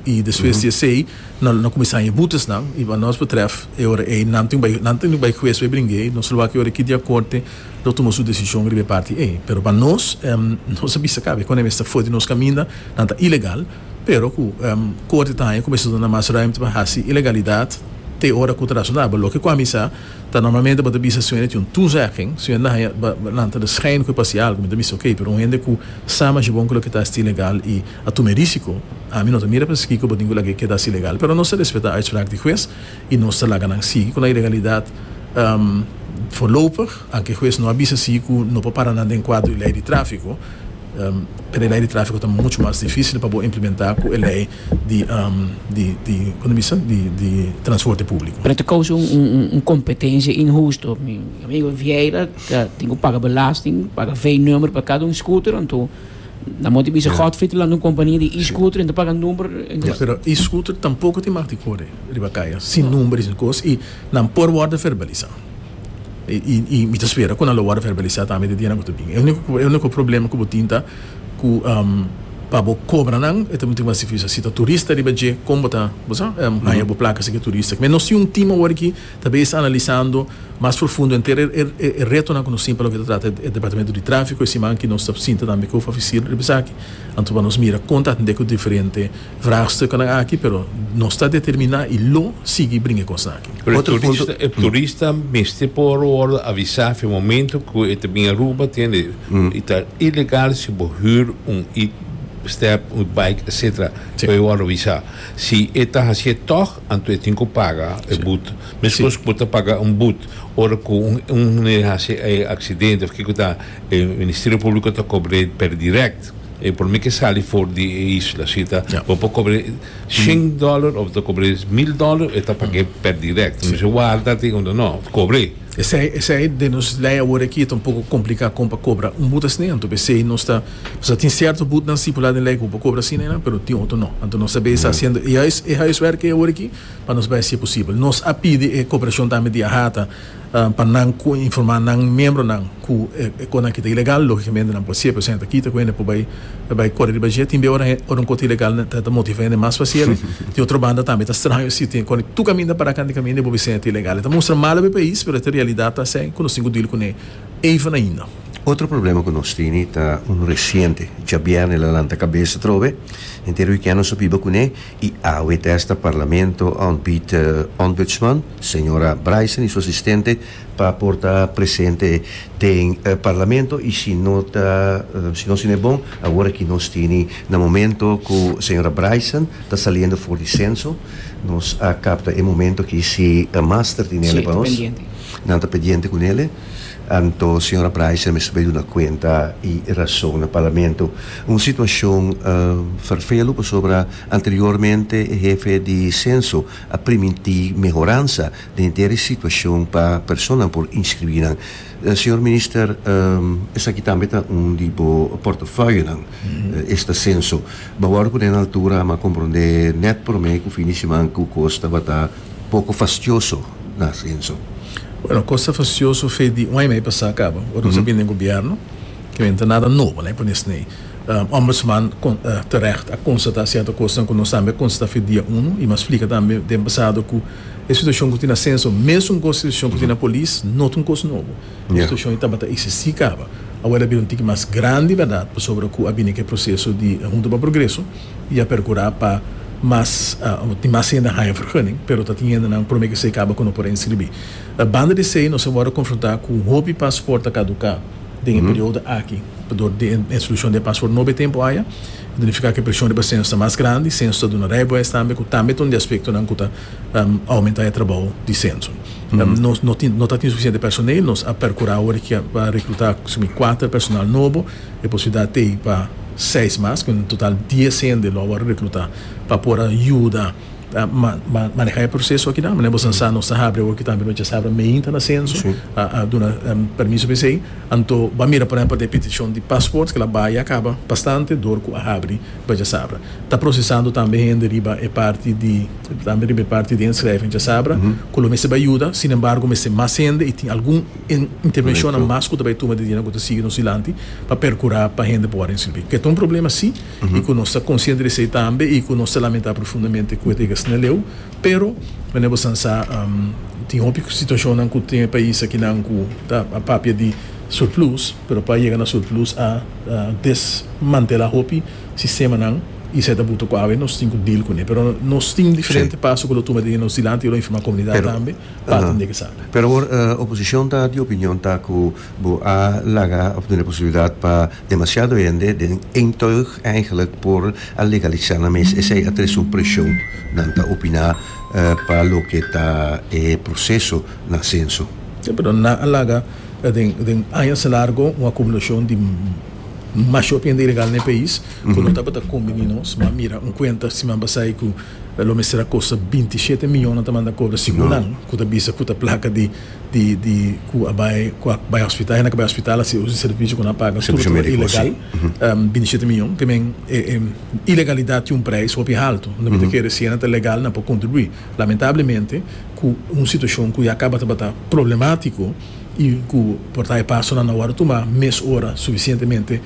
i despues di esei nan lo kuminsá haña butesnan i pa nos betrèf e ora ei nan tin ku bai nan tin ku bai hues bai bringe ei. Nos lo wak e ora aki dia korte lo tuma su desishon riba e parti ei pero pa nos nos a bisa kabe kònde mester for di nos kaminda nan ta ilegal. pero ku Korte ta haña ku mester duna mas ruimte pa hasi ilegalidat te ora ku ta rasonabel. Loke ku ami sa ta normalmente bo ta bisa si un hende tin un toezegging, si un hende haña bo bo lanta de schijn ku e pasa i algu, mi ta bisa oké, pero un hende ku sa masha bon ku loke ta hasi ta ilegal i a tuma e risiko, ami no ta mira paskiko bo tin ku lag'é keda hasi ilegal. Pero nos ta respetá uitspraak di hues y nos ta laga nan sigui cu nan ilegalidad voorlopig, anke hues no a bisa si cu no por para nan den cuadro e ley di trafico, pero e ley di trafico ta mucho mas dificil pa bo implementa cu e ley di transporte publico. Pero ta causa un competencia inhusto, mi amigo Vieira ta tin cu paga belasting, paga V-number pa cada un scooter, anto. Na moti bisa yeah. Godfrey te landa un compania di e-scooter, en te paga number. En yeah, pero e-scooter tampoco te mag te corre riba kaya, sin no. number, sin cos, y nan por worden verbaliza. Y, y, y mi te spera con lo worden verbaliza también te diena que te bin. El único, el único problema que botinta, que, um, pa bo cobra nan, e tem tem así fisa, si ta turista riba je, como ta, bosa, um, mm -hmm. haya bo placa se que turista. Me no si un team awor ki, Ta bes analisando mas profundo henter e e retonan ku nos tin pa loke ta trata e departamento di trafiko. E siman aki nos ta sinta tambe ku oficer riba esaki, anto pa nos mira kon ta atende ku diferente vraagstukennan aki, pero nos ta determiná i lo sigui bringa e kosnan aki. Pero e turista e turista mester por wòrdu avisá afia momento ku e ta bini Aruba, tende? I ta ilegal si bo hür un e step, un bike, etsetera, pa e wòrdu avisá. Si e ta hasié tòg. Anto e tin ku paga e but. Meskos ku bo ta paga un but, ora ku un un hende hasi e aksidente òf kiko ta, e Ministerio Públiko ta kobr'é per dirèkt. E por mi ke sali for di e isla. Si ta, bo por kobr'é shen dòler òf ta kobr'é mil dòler, e ta pag'é per dirèkt. Nan mesora warda te unda nò, kobr'é. Esei esei den nos lei awor aki ta un poko kompliká kon pa kobra un but asina. Anto p'esei nos ta. Sa tin sierto but nan stipular den ley cu bo cobra asina y nan, pero tin otro no. Anto nos ta bay haciendo e huis, e huiswerk ey awor aki pa nos bay haci e posibel. Nos a pidi e cooperacion tambe di AHATA pa nan cu informa nan miembronan cu e conan ki ta ilegal, logicamente nan por haci e procedimiento aki ta cu hende por bay bay core riba dje. Tin bay ora ora un cosa ta ilegal nan ta motiva hende mas pa haci ebe. Di otro banda tambe e ta straño si tin con tur caminda para cantikaminda y bo bisa e ta ilegal. E ta mustra malo pa e pais, pero e ta realidad ta asey cu nos tin cu deal cun'e. even ainda. Otro problema cu nos tene ta un reciente, djabier nel a lanta cabeza atrobe, henter weekend nos a biba cune y awe ta esta Parlamento a ontbied Ombudsman, Sra. Bryson y su asistente pa por ta presente den Parlamento y si no ta, si nos tin e bon, awor aki nos tene na momento cu Sra. Bryson ta saliendo for di censo, nos a capta e momento aki si Master tin nel pa nos. Nan ta pendiente cu Nele, anto Sra. Bryce a mester bay duna cuenta y razon na Parlamento. Un situacion vervelu pasobra anteriormente e hefe di Censo a priminti mehoransa den dere situacion pa personanan por inscribi nan. Señor Minister, esaki tambe ta un di bo portafoyonan, esta Censo. Bo a worde cu den altura a comprende net prome cu fin di siman cu cos tabata poko fastioso na asenso. Bueno, kos ta fastioso fe di un aña mei pasá kaba, ora nos a bini den gobièrnu, ke no ta nada nobo, e pone esei. Ombudsman terègt a konstatá sierto kosnan ku nos tambe a konstatá fe dia uno i mi a splika tambe den pasado ku e situashon ku tin na asenso, mesun ku e situashon ku tin na polis, no ta un kos nobo. E situashon ei tabata eksistí kaba. Awor el a bira un tiki mas grandi, bèrdat, pasobra ku a bini ke proseso di Huntu pa Progreso. I a percura pa mas tin mas hende haya vergunning, pero ta tin hendenan prome cu esey caba cu no por inscribi. Banda di esey nos a worde confronta cu hopi paspoort ta caduca den e periodo aki pasobra di e introduccion di e paspoort nobo e tempo haya ta nifica cu e presion riba censo ta mas grandi, censo ta duna rijbewijs tambe cu tambe ta un di e aspectonan cu ta aumenta e trabao di censo. Nos no ta tin suficiente personel, nos a percura awor pa recluta simi cuater personal nobo. E por ciudad t'ey pa seis mas, cu en total dies hende lo a worde recluta pa por a yuda maneha e proceso aki nan. Manera boso a sa, nos ta habri awor cu tambe nos djazabra meen ta na censo, a duna permiso pa esey. Anto bo a mira por ehempel den e peticion di passport cu la bay a caba bastante door cu a habri bo djazabra. Ta procesando tambe hende riba e parti di, tambe riba e parti di inschrijven djazabra cu lo mester bay yuda, sin embargo mester mas hende y tin algun. E intervencionnan mas cu ta bay tuma di dina cu ta sigui nos dilanti pa percura pa hende por word den sirbi. Cu e ta un problema si y cu nos ta consciente di esey tambe y cu nos ta lamenta profundamente cu e ta yega asina leu, pero manera bo san sa tin hopi situacionnan cu tin e pais akinan cu ta a papia di surplus, pero pa yega na surplus a desmantela hopi sistemanan y esey ta buta cu awe nos tin cu deal cune. Pero nos tin diferente paso cu lo tuma di dina nos dilanti y lo informa comunidad tambe. Pat un di ke sabi. Pero awor oposicion ta di opinion ta cu bo a laga of duna posibilidad pa demasiado hende den een tuig eigenlijk por a legalisa nan mes. Esey a tres un presion nan ta opina pa loke ta e proceso na censo. Si, pero nan a laga den añas largo un acumulacion di mashop hende ilegal na e pais cu no tabata conbini nos. Bo a mira un cuenta siman pasai cu. E lo mester a kosta binti i shete miyon nan ta manda kobra sigunnan ku ta bisa ku ta plaka di di di ku a bai ku a bai hospital hende ku a bai hospital a sibi un servisio ku nan paga tur tur a ilegal binti i shete miyon te men e e ilegalidat tin un preis hopi haltu no mi ta kere si hende ta legal nan por kontribuí lamentablemente ku un situashon ku ya kaba tabata problematiko i ku por ta e pasonan nan wòrdu tumá mes ora sufisientemente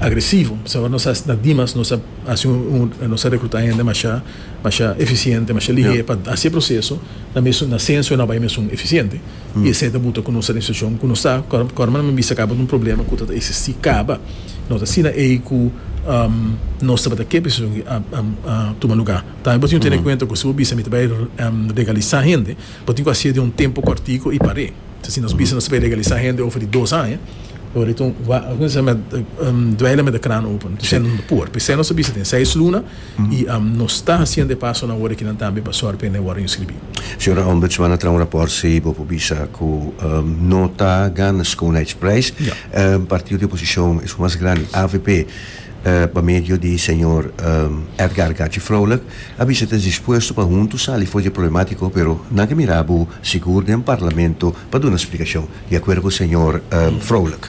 agresivo p'esei ora nos a na dimas nos a Hasi un, nos ta rekruta hende masha, masha efisiente, masha lihé pa hasi e proseso na mesun, na senso na bai mesun efisiente. I esei ta buta ku nos ta den situashon ku nos ta. Kòrda mi bisa kaba di un problema ku ta ta eksistí kaba. No ta asina ei ku nos tabata kep e situashon aki a tuma lugá. Tambe bo tin ku tene en kuenta ku si bo bisa mi ta bai regalisá hende. Bo tin cu haci'e den un tempo cortico y par'e. Sa si nos bisa nos ta bay legaliza hende over di dos aña, Loreto dweila met e kraan open. Nos ta bisa no por. P'esey nos ta bisa den seis luna y nos ta haciendo e paso na worde kinan tambe pa sor p'ende worde inscribi. Señora Ombudsman a traha un raport si bo por bisa cu no ta gana schoonheidsprijs. Partido di oposicion, e su mas grandi, avp, pa medio di señor Edgar Gachi Froulik, a bisa ta dispuesto pa huntu sali for dje problematiko pero nan ke mira bo sigur den parlamento pa duna splikashon, di akuerdo ku señor Froulik.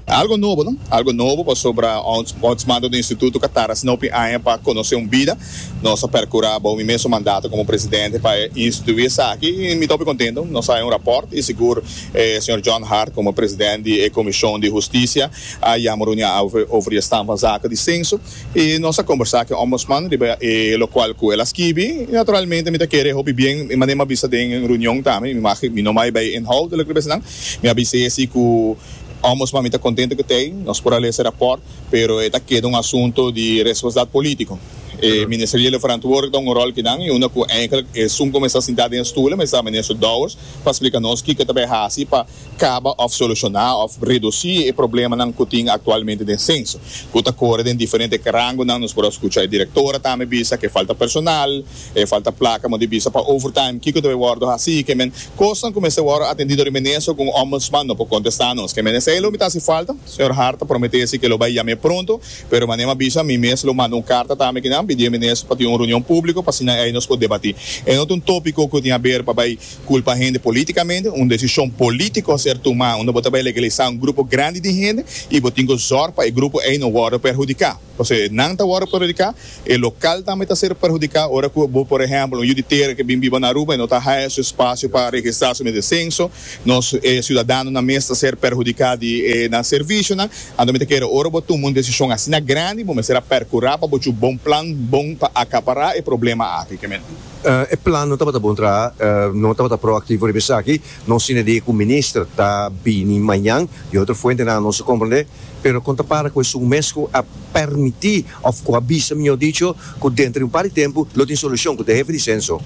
Algo nobo no, algo nobo pasobra ots mando di instituto ka tarda sino p'e aña pa konosé un bida. Nos a perkurá bou mi mesun mandato komo presidente pa instituí esaki i mi ta hopi kontento. Nos a haña un rapòrt i sigur E señor John Hart como president di e Comision di Husticia a yama un reunia over e stand van zaken di censo y nos a combersa cu e Ombudsman riba e locual cu el a skibi y naturalmente mi ta kere hopi bien y mane mi a bisa den reunion tambe mi no bay bay inhoudelijk riba esanan mi a bisa esi cu Ombudsman mi ta contento cu t'ey nos por a lesa e rapport pero e ta keda un asunto di responsabilidad politico e ministeriele verantwoordelijk ta un rol kinan y unda cu eindelijk esun como e sta sinta den e stoelen mester a Minister Dowers pa splika nos kiko ta bay hasi pa kaba of solushona of redusi e problemanan ku tin aktualmente den senso ku ta kore den diferente rangonan. Nos por a skucha e direktora tambe bisa ke falta personal, e falta plaka mo di bisa pa overtime kiko ta bay wòrdu hasi kemen kosnan ku mester wòrdu atendido riba neso ku un ombudsman no por kontesta nos kemen esei lo mi ta hasi falta. Señor Hart ta promete si ke lo bay yam'é pronto. Pero mane'e m'a bisa, mi mes lo manda un karta tambe ki nan, pidié menes pa tin un reunion públiko pa asina ei nos por debatí. E no ta un tópiko ku tin haber pa bai kulpa hende polítikamente. Un desishon polítiko a ser tumá unda bo ta bai legalisá un grupo grandi di hende i bo tin ku zòrg pa e grupo ei no wòrdu perhudiká. Pasobra si nan ta wòrdu perhudiká, e lokal tambe ta ser perhudiká ora ku bo, por ehèmpel, un yu di tera ke bin biba na Aruba i no ta haña su espasio pa registrá su mes de senso, Nos siudadanonan mes ta ser perhudiká di e nan servisionan. Anto mi ta kere ora bo tuma un desishon asina grandi bo mester a perkurá pa bo chu bon plan bon pa akapará e problema aki. Ke men. E plan no tabata bon traha, no tabata proaktivo riba esaki. Nos tin idea ku minister ta bini mañan, di otro fuentenan nos a komprendé, pero kon ta para ku esun mes ku a permití Of cu a bisa, mijor dicho, cu denter di un par di tempo lo tin solucion cu ta e hefe di censo.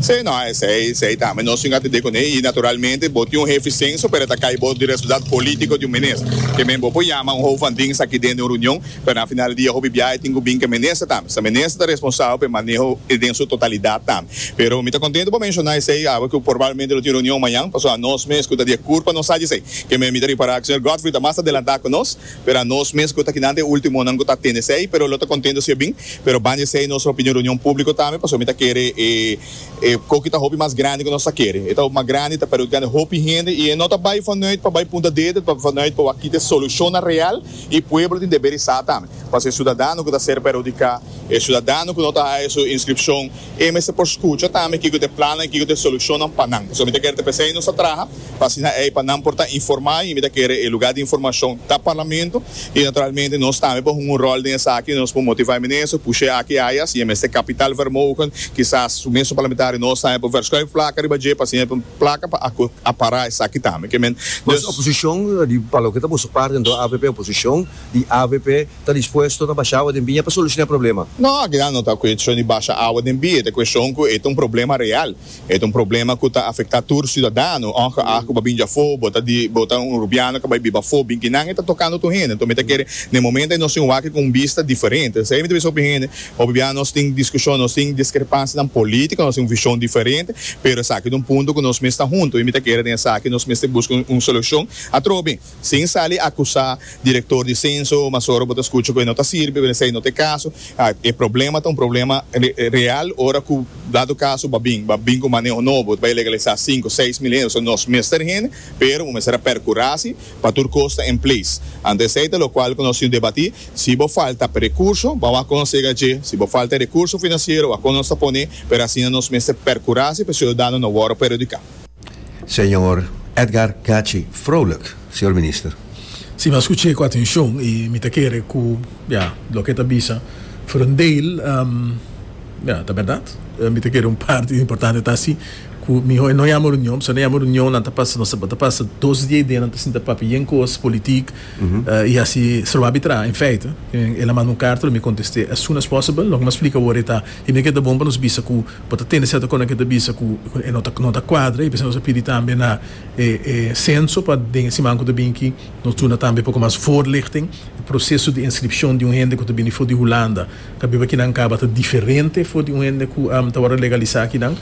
Sí, no, esey, esey tambe nos tin atende cuney y naturalmente bo tin un hefe di censo pero e ta cay bos di resultado politico di un minister. Ke men bo por yama un hoop van dings aki den di un reunion pero na final di dia hopi biaha e tin cu bin ke minister tambe. Sa minister ta responsable pa e maneho den su totalidad tambe. Pero mi ta contento pa menciona esey awe cu probablemente lo tin reunion mañan pasobra nos mes cu ta di e curpa nos sa dje esey. Ke men mi ta ripara cu señor Godfrey ta mas adelanta cu nos. Pero a nos mes cu ta kinan ta e ultimonan cu ta tende esey, pero lo ta contento si a bin, pero banda esey nos lo pidi un reunion publico tambe, pasobra mi ta kere e e coki ta hopi mas grandi cu nos ta kere. E ta hopi mas grandi, e ta perhudicando hopi hende y e no ta bay vanuit pa bay punta dedo, e ta vanuit pa wak kita e solucionnan real y pueblo tin deber di sa tambe, pasobra e ciudadano cu ta ser perhudica, e ciudadano cu no ta haya su inscripcion, e mester por scucha tambe kico ta e plannan y kico ta e solucionnan pa nan. Pasobra mi ta kere ta p'esey nos ta traha. pa asina ei pa nan por ta informá i mi ta kere e lugá di informashon ta Parlamento i naturalmente nos tambe por hunga un ròl den esaki, nos por motivá e minister, push'é aki i aya, si e mester kapitaalvermogen, kisas su mes su parlamentario nos tambe por vèrscòi e plaka riba dje pa asina e por plaka pa apará esaki tambe. Ke men dus. Oposishon di pa loke ta boso parti anto avp oposishon i avp ta dispuesto ta basha awa den biña pa solushoná e problema? No, akinan no ta kueshon di basha awa den biña, ta kueshon ku ei ta un problema real E ta un problema ku ta afektá tur siudadano, òngeag ku bo a bini afó, bo ta di bo ta un rubiano ku a bai biba afó, binkinan e ta tokando tur hende. Anto mi ta kere na e momento ei nos tin un wak ku un bista diferente. Esei mi ta bisa hopi hende, hopi bia nos tin diskushon, nos tin diskrepansianan polítiko, nos tin un vishon diferente, pero esaki ta un punto ku nos mes ta huntu i mi ta kere den esaki nos mester buska un solushon atrobe. Sin sali akusá direktor di senso, mas ora bo ta skucha ku e no ta sirbi, bo ta esei no ta e kaso. E problema ta un problema real ora ku dado kaso bo a bin, bo a bin ku un maneho nobo, bo ta bai legalisá sinku, seis mil hende. So nos mester hende, pero bo mester a perkurá si pa tur kos ta en ples. Anto esei ta lokual ku nos tin debatí. Si bo falta rekurso, bo a wak kon nos yega dje. Si bo falta rekurso finansiero, wak kon nos ta pone, pero asina nos mester perkurá si pa e siudadano no wòrdu perhudiká. Señor Edgar Gachi Frolijk, Señor Minister. Si, mi a skuché ku atenshon i mi ta kere ku ya loke e ta bisa for un deel ya ta bèrdat. Mi ta kere un parti importante ta si ku mi ho'i no yama runion, pasobra yama runion nan ta pasa nos ta pasa dos dia i dia nan ta sinta papia yen kos politik i hasi stroba abitrá. En feite el a manda un karta lo mi kontesté as soon as possible. Loke mi a splika wor e ta, i mi kere ta bon pa nos bisa ku Bo ta tende serto conan ke ta bisa ku e no ta no ta kuadra y p'esei nos a pidi tambe na e e censo pa den e siman ku ta bin ki nos duna tambe poko mas voorlichting. E proseso di inscripcion di un hende ku ta bini for di Hulanda ta biba kinan kaba ta diferente for di un hende ku ta wòrdu legalisa kinan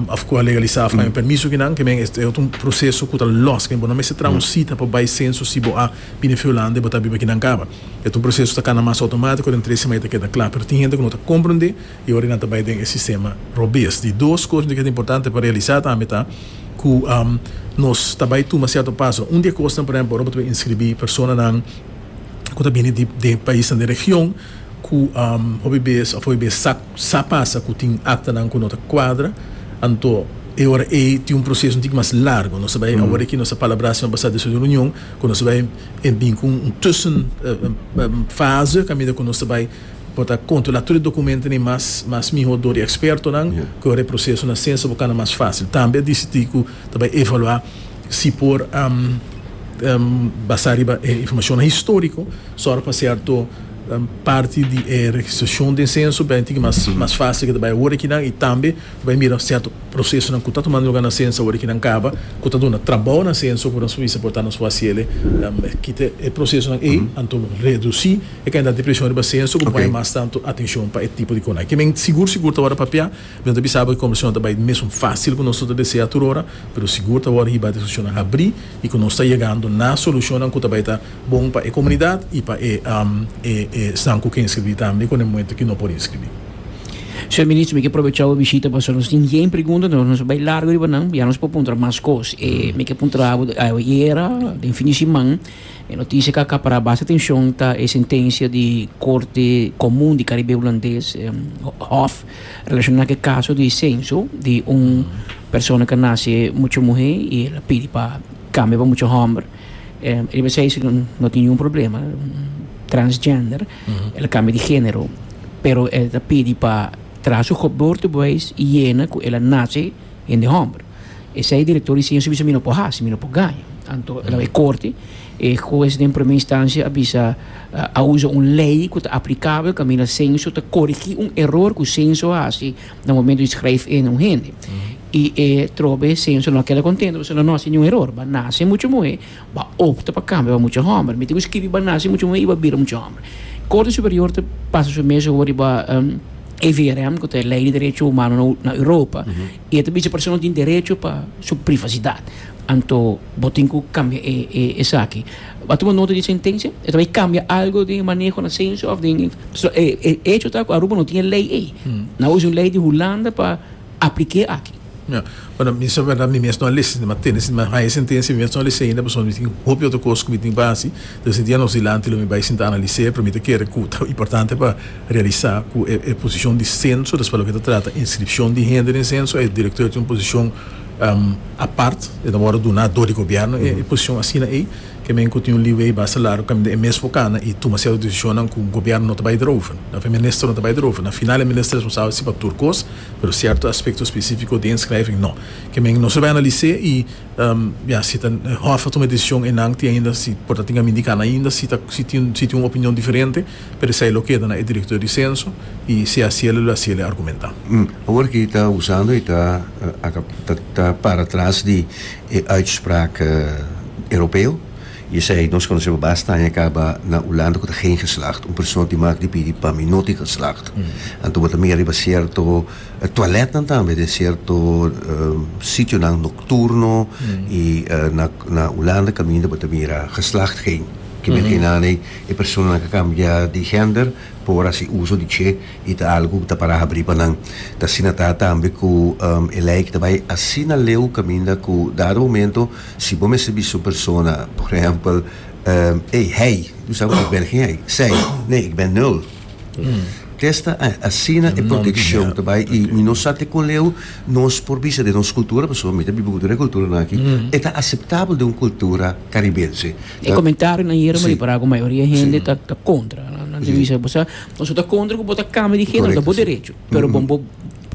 of ku a legalisa of ku a haña permiso kinan. Ke men e otro proseso ku ta lòs ke bo no mester traha un sita pa bai censo si bo a bini for di Hulanda y bo ta biba kinan kaba. E otro proseso ta kana mas outomatiko den tres sima e ta keda kla pero tin hende ku no ta komprondé. Y ora nan ta bay den e sistema robez di dos cosnan di ke ta importante pa realisa tambe ta cu nos ta bay tuma cierto paso. Un di e cosnan por ehemplo ora bo ta bay inscribi personanan cu ta bini di den paisnan den region cu hopi bes of hopi bes sa sa pasa cu tin actanan cu no ta cuadra anto e ora ey tin un proceso un tiki mas largo. Nos ta bay awor aki nos ta palabra semana pasa despues di un reunion cu nos ta bay bin cu un tussen fase caminda cu nos ta bay Bo ta kontrolá tur e dokumentonan mas mas mihó dor e ekspertonan, ku e ora e proseso na sensa bo kana mas fásil. Tambe a disidí ku ta bai evaluá si por basá riba e informashonnan históriko sòrg pa sèrto parti di e registrashon den senso bira inti ki mas mas fásil ke ta bai ora kinan i tambe ta bai mira sèrto prosesonan ku ta tumando luga na sensa ora kinan kaba ku ta duna trabou na senso ku nos por bisa por ta nos por hasiele kita e prosesonan ei anto redusí. E kende a tin preshon riba se, so ku bo pone mas tantu atenshon pa e tipo di konai. Ke men sigur sigur ta wòrdu papia, mi no ta bisa bo ku e konversashon ta bai mesun fásil ku nos no ta desea tur ora, pero sigur ta wòrdu hibá diskushonnan habrí i ku nos ta yegando na solushonnan ku ta bai ta bon pa e komunidat i pa e esnan ku ke inskribí tambe i ku nan muentu ku no por inskribí. Señor Minister, mi ke probechá bo bishita pasobra nos tin yen pregunta, entonces nos a bai largu riba nan, ya nos por puntra mas kos. Mi ke puntra bo di awe i era den fin di siman. E noticia cu a capara basta atencion ta e sentencia di Corte Comun di Caribe Hulandes, HOF, relaciona cu e caso di censo di un persona cu a naci mucha muher y el a pidi pa cambia pa mucha homber. El a bisa esey no tin ningun problema, transgender, el a cambia di genero, pero el ta pidi pa traha su geboortebewijs y yena cu el a naci hende homber. Esei direktor di Sienso bisa mi no por hasi, mi no por gaña. Anto el a bay korte, e hues den promé instansha a bisa a usa un lei ku ta aplikabel kaminda Sienso ta korigí un eror ku Sienso a hasi na momento di skrijf in un hende. I e trobe Sienso no a keda kontento pasobra no a hasi niun eror. Ba nase mucha muhé, ba opta pa kambia pa mucha hòmber. Mi tin ku skiribi ba nase mucha muhé i ba bira mucha hòmber. Korte Superior ta pasa su mes owo riba EVRM ku ta e Lei di Derecho Humano na Europa. I e ta bishi persona tin derecho pa su privasidad. Anto bo tin cu cambia e e esaki. A tuma nota di sentencia? E ta bay cambia algo den e maneho na censo of den so e e hecho ta cu Aruba no tin e ley ey. Nan a usa un ley di Hulanda pa aplique aki. Ya. Bueno, mi sa berdad mi mes no a lesa sinta mi a tene sinta mi a haya e sentencia, mi mes no a lesa ainda pasobra mi tin hopi otro cos cu mi tin pa haci. Te sinti anos dilanti lo mi bay sinta analiser pero mi ta kere cu ta importante pa realisa cu e posicion di censo, despues loke ta trata inscripcion di hende den censo, e directeur tin un posicion apart, e ta worde duna door di gobierno e posicion asina ey, ke men cu tin un leeway basta largo caminda e mes por cana y tuma cierto decisionnan cu gobierno no ta bay derover, tal vez minister no ta bay derover, na final e minister responsabel si pa tur cos, pero cierto aspecto specifico di inschrijving no, ke men nos lo bay analis'e y ya si ta hof a tuma e decision eynan tin ainda si por ta tin caminda y cana ainda si tin un opinion diferente. Pero esei lo keda na e director di censo y si hacia lo hacia el e argumenta. Awor ki ta usando y ta ta para tras di e uitspraak Europeo y esei nos conoceBa basta aña caba na Hulanda cu ta geen geslacht. Un persoon di mag di pidi pa mi no tin geslacht. Anto bo ta mira riba cierto toiletnan tambe den cierto sitionan nocturno y na Hulanda caminda bo ta mira geslacht geen. Ki men geenanei. E personanan ke kambia di hender por hasi uso di che i ta algu ku ta para habri pa nan. Ta asina ta tambe ku e lei ta bai asina leu kaminda ku dado momento si bo mester bisa un persona, por ehèmpel, Ey, hei, bo sa ku ik ben geen hei. Zij, Nee, ik ben nul. Testa a asina e protekshon ta bai i mi no sa te kon leu nos por bisa den nos kultura, pasobra mi ta biba ku tur e kulturanan aki, e ta aseptabel den un kultura karibense. E comentarionan yere me repará ku mayoria hende ta ta kontra. Nan te bisa bo sa, nos ta kontra ku bo ta kambia di género, ta bo derecho. Pero bon bo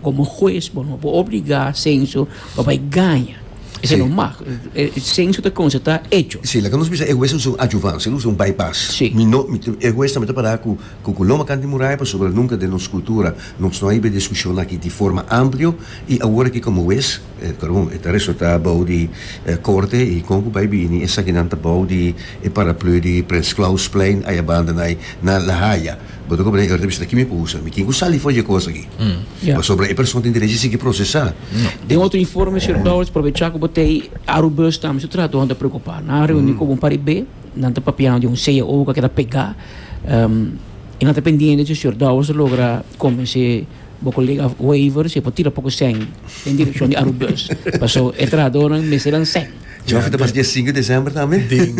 komo hues bo no por obligá senso pa bai gaña. Esei no mag. Senso ta konstatá echo. Sí, laga nos bisa e hues no ta un ajuvan, sino nos ta un bypass. Sí. Mi no, mi ta, e hues tambe ta pará ku ku loma kant di muraya pasobra nunka den nos kultura nos no a hiba e diskushonnan aki di forma amplio i awor aki komo hues, Karum e ta resulta bou di e korte i kon ku bai bini esakinan ta bou di e paraplu di Prins Klausplein ayabanda nai na La Haya. Bo ta komprende Heurtebis ta kimi por usa mi? Kin ku sali for dje kos aki? Pasobra e person tin derechi sigui prosesá. Den otro informe Sir Dowers probechá ku bo ta ei Arubus tambe su trato nan ta preokupá. Nan a reuní ku bo un par di be, nan ta papiando di un cao ku a keda pegá i nan ta pendiente si Sir Dowers lo logra kombensé. Bo colega Wavers e por tira poco sen en dirección di Aru Bus. Paso e trabajadornan mester dan sen. Tjofi ta pas dia sinku di december tambe? Den,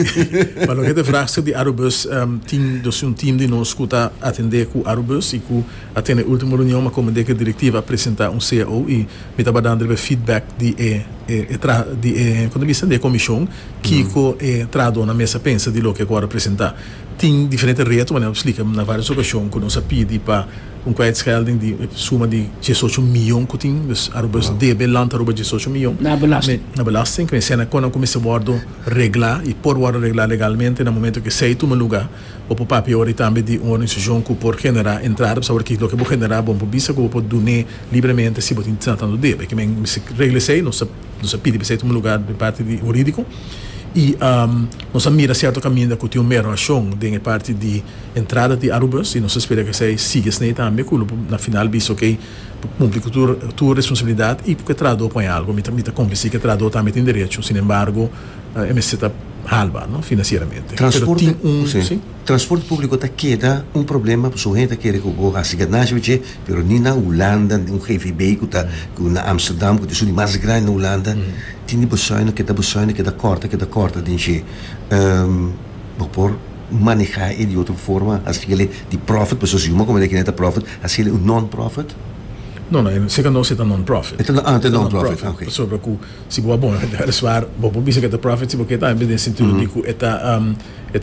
pa loke ta vraagstuk di Aru Bus, tin dos un team di nos cu ta atende cu Aru Bus y cu a tene e ultimo reunion, ma como deke directiva a presenta un cao y mi ta badando riba e feedback di e e traha di e con ta bisa di e comision kico e trahadornan mes a pensa di loke cu a representa. Tin diferente reto, manera cu a splica na varios ocasion, cu nos a pidi pa. Un kwijtschelding di suma di diesocho mion ku tin, dus Aruba nos debe land Aruba diesocho mion Na belasting. na belasting, ku esei na kon a ku mester wòrdu reglá i por wòrdu reglá legalmente na momentu ku esei tuma lugá. Bo por papia ori tambe di un organisashon ku por generá entrada, pasabra ki loke bo generá bo por bisa ku bo por dun'é libremente si bo tin tantu debe. Ki men mester regla esei, nos ta nos ta pidi pa esei tuma lugá den parti di hurídiko i nos a mira sierto kaminda ku tin un merorashon den e parti di. Entrada di Arubus y nos a spera cu esey sigui esney tambe cu lo por na final bisa ok por cumpli cu tur tur responsabilidad y cu e trahador por haña algo. Mi ta convenci cu e trahador tambe tin derecho sin embargo e mester ta halba no financieramente. Pero tin un si. Transporte publico ta keda un problema pasobra hoy en día ta kere cu bo haci ganashi oye che pero ni na Hulanda un gvb cu ta cu na Amsterdam cu ta e ciudad mas grandi na Hulanda tin di bezuino keda bezuino keda corta keda corta den che bo por maneha e di otro forma, haciele di profit, pues nos yuma comenta kine'e ta profit, haciele un non-profit? No, no, e seca nos e ta non-profit. E ta non, ah, e ta non-profit, ok. Pasobra cu si bo a bona cantidad di suar, bo por bisa cu e ta profit si bo kier tambe den sentido di cu e ta, um, e ta.